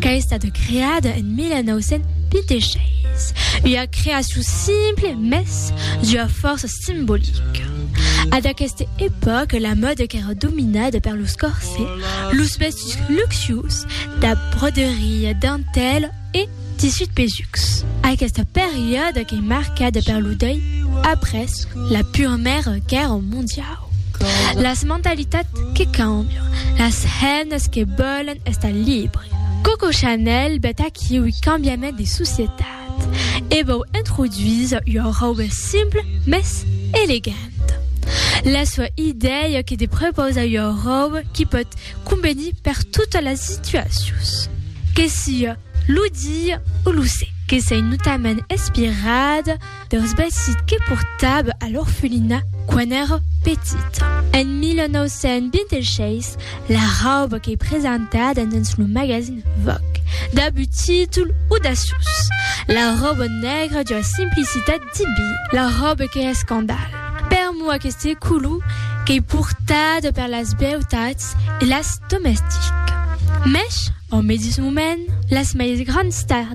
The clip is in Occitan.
qu'a estat creada en 1926, ua creacion simple mès d'ua fòrça simbolica. A d'aqueste epòca la mòda qu'èra dominada per los corsets, los vestits luxius dab broderia, dentèla e tissus pesucs. Aquesta periòda qu'ei marcada per lo dèi après la Purmèra Guèrra Mondiau. Las mentalitats que cambian, las hènas que vòlen estar libres. Coco Chanel vet aquí ui cambiament de societat e vòu introduís ua rauba simple mès eleganta. La sua idèia que de prepausar ua rauba qui pòt convenir per totas las situacions, que siá lo dia o lo sègle, que s'ei notament inspirada Deus bèsit que portava a l'orfelina quan èra petita. En 1926, la rauba qu'ei presentada dens lo magazin Vogue dab un títol audaciós, La rauba nègra d'ua simplicitat diví, la rauba qu'ei escandal. Per moi aqueste color qu'ei portada per las beutats e las domestiques. Mès, au medís moment, las mei grands stars,